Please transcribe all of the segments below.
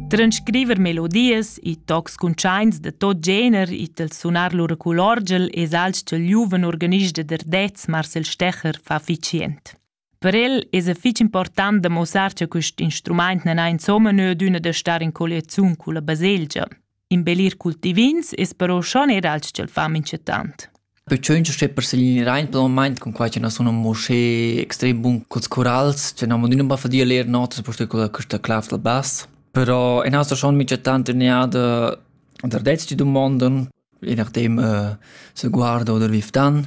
Transcriver melodias e tocs cuntschaints da tot gener it al sunar lur culorgel es alch cha'l giuven organist da Derdez Marcel Stecher fa ficient. Per el es fich important da muossar cha quist instrumaint nan ha insomma nö d'üna da star in colliaziun culla baselgia. Imbellir cultivins es però schon eir alch ch'el fa minchatant. Perciò che per seglinirein per il moment con qua che non sono mosche extrem bun col corals, che non modino ba fadia leer notas posto con questa clav del bass. Però in asta schon minchatant neada der detsti domonden, je nachdem uh, se guarda oder wie fdan.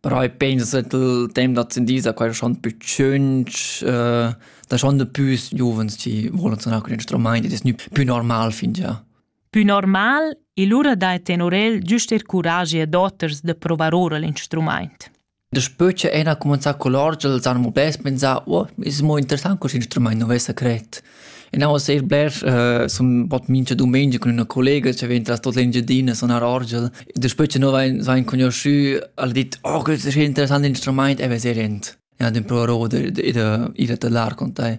Però i pensas che il temp d'ascendì sa quai schon pü tschünch, da schon da pü giuvens chi volan suonar cun instrumaint ed es gnü pü normal fingià. Pü normal e lura dai tenor el giust eir curagi ad oters da provar oura l'instrumaint. Daspö cha Ena ha cumanzà cul orgel s'hanu mo bels pensà «Oh, es mo interessant cust instrumaint, nu vessa cret». Genau sehr blers äh, sun bot mincha dumengia cun üna collega cha vegn tras tot l'Engiadina sunar orgel. Daspö cha no vain, vain conosciü, al dit, oh, quel seja interessant instrumaint e vezè rent. Ja, den provarò d'ir da lar con tai.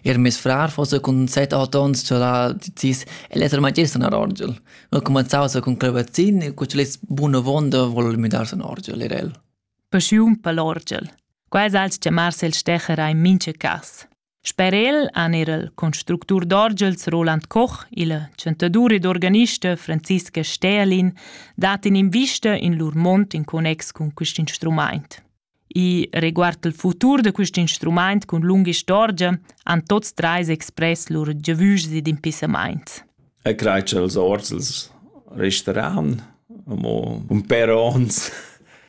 Er mes frar fosse cun set acht ons cha la decis el esser magister in orgel. Noi comenzaus cun clavazin e cu c'è buna vonda vol müdarse in orgel er el. Paschiun per l'orgel. Quai als chiamarse il stecher a in mincha cas. Sper el han er il constructur d'orgels Roland Koch, il chantadur ed organista Franziska Stählin dat in'invista in lur mond in connex cun quest instrumaint. I riguard il futur da quest instrumaint cun lunga istorgia han tots treis express lur giavüschs ed impissamaints. E crei che els orzels resteran amo un per ons,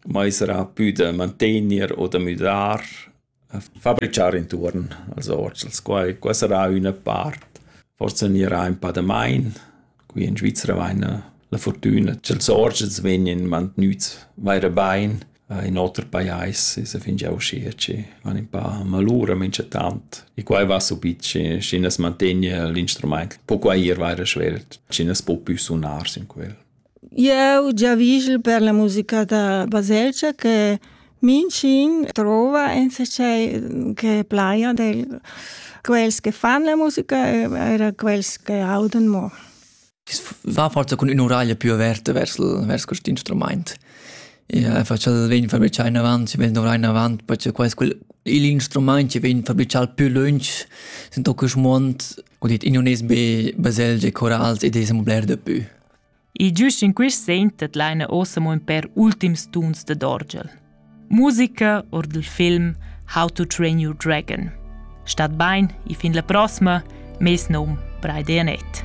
mai sarà più da mantenere o da müdar Fabrichar intuorn als orts, als quai, quai sarà üna part. Forsa gnirà ün pa da main. Qui in Svizra vaina la furtüna cha'ls orts vegnan mantgnüts vaira bain in oter pajais e sa fingià uschia chi van ün pa malura minchatant. E quai va subit schi schi as mantegna l'instrumaint po quai ir vaira svelt, schi nu's po pü sunar sün quel. Eu giavüschel per la musica da baselgia che minchün trova in se cei che plaja del quels che fan la musica e eir quels che audan mo. Va forsa cun ün'uraglia più averta vers il vers quist instrumaint. Ja, facel vegn fabrichà inavant, si vegn dovrar inavant, perché quels quel il instrumaint che vegn fabrichà più lunch sind doch quist muond, ho dit in unes be baselgie, chorals ed es amo bler da pü. E giust in quist segn tedlaina ossa mo ün pêr ultims tuns dad orgel. Musica our dal film How to Train Your Dragon. Stat bain e fin la prossima, mes nom Braide Anett.